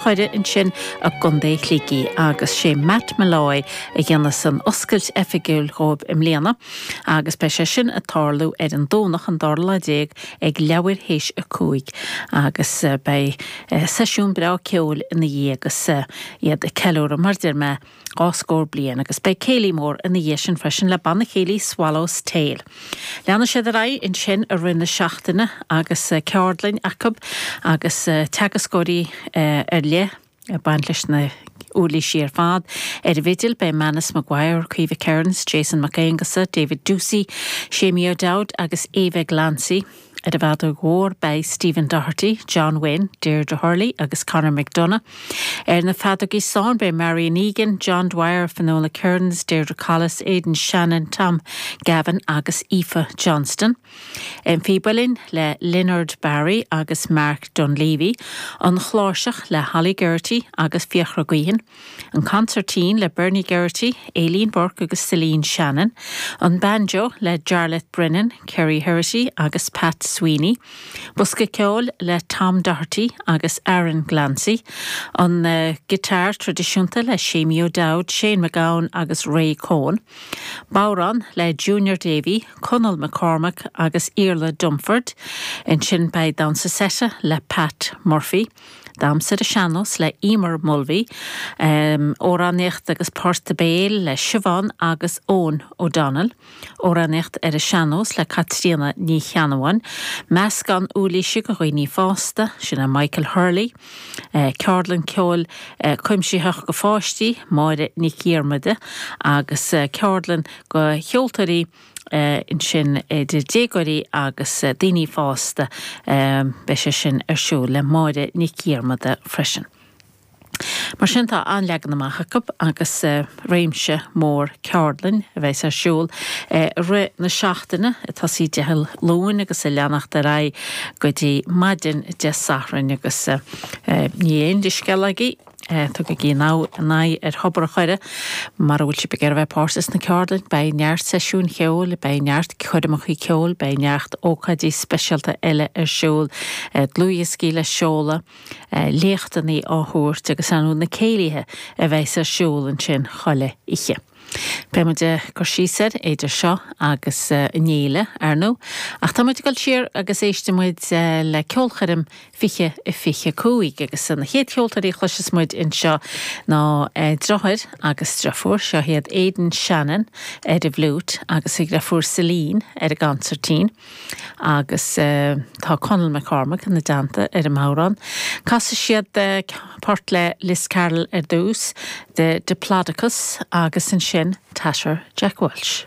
Choire ansin i gContae Shligigh agus sé Matt Molloy a dhéanfas an oscailt oifigiúil dhóibh i mbliana agus beidh sé sin ag tarlú ar an Domhnach an dara lá déag ag leathuair théis a cúig agus beidh seisiún breá ceoil ina dhiaidh agus iad ag ceiliúradh mar deir mé dhá scór bliain agus beidh céilí mór ina dhiaidh sin freisin le banna céilí Swallow's Tail. Leanann siad ar aghaidh ansin i rith na seachtaine agus ceardlainn acu agus teagascóirí ar leith ag baint leis na uirlisí ar fad. Ar an bhfidil, beidh Manus Maguire, Caoimhe Kearins, Jason Mac Aonghusa, David Doocey, Seamie O'Dowd agus Eva Glancy. Ar an bhfeadóg mhór beidh Stephen Doherty, John Wynne, Deirdre Hurley agus Conor McDonagh. Ar na feadógaí stáin beidh Marian Egan, John Dwyer, Finola Kerins, Deirdre Collis, Aidan Shannon, Tom Gavin agus Aoife Johnston. An Phíb Uilleann le Leonard Barry agus Mark Dunleavy, An Chláirseach le Holly Geraghty agus Fiachra Guihen, an consairtín le Bernie Geraghty, Aileen Burke agus Celine Shannon, an banjo le Jarlath Brennan, Kerrie Herrity agus Pat Sweeney, bosca ceoil le Tom Doherty agus Aaron Glancy, an giotáir traidisiúnta le Seamie O'Dowd, Shane McGowan agus Ray Coen, bodhrán le Junior Davey, Conall McCormack agus Iarla Dunford, ansin beidh damhsa seite le Pat Murphy. Damhsa ar an Sean-Nós le Eimear Mulvey, Amhránaíocht agus Port Béil le Siobhán agus Eoin O'Donnell, Amhránaíocht ar an Sean-Nós le Caitríona Ní Cheannabháin, Meascán Uirlisí go dhaoine fásta, sin le Michael Hurley, Ceardlann Ceoil Cuimsitheach go pháistí, Máire Nic Dhiarmada agus Ceardlann go cheoltóirí, ansin idir déagóirí agus daoine fásta. Beidh sé sin ar siúl le Máire Nic Dhiarmada freisin. Mar sin tá an-leagan amach acu agus réimse mór ceardlainn a bheas ar siúl i rith na seachtaine, ag tosaí Dé Luain agus ag leanacht ar aghaidh go dtí maidin Dé Sathairn agus níl aon leithscéal agaibh. Tugaigí aghaidh ar Thobar an Choire mara bhfuil sibh ag iarraidh a bheith páirteach sna ceardlainne, beidh neart seisiúin cheoil, beidh neart coirmeacha ceoil, beidh neart ócáidí speisialta eile ar siúl, dlúthdhioscaí le seoladh, léachtanaí á thabhairt agus ann na céilithe a bheas ar siúl ansin chuile oíche. Beidh muid ag cur síos air idir seo agus an fhéile, ar ndóigh, ach tá muid ag dul siar agus éistfidh muid le ceolchoirm 2025 agus na chéad cheoltóirí a chloisfeas muid anseo ná driotháir agus driofúr, seo iad Aidan Shannon ar an bhfliúit agus a dhriofúr Celine ar an gconsairtín. Agus tá Conall McCormack ina dteannta ar an mbodhrán. Casfaidh siad port le Liz Carroll ar dtús, 'The Diplodocus', agus ansin 'Tatter Jack Walsh'.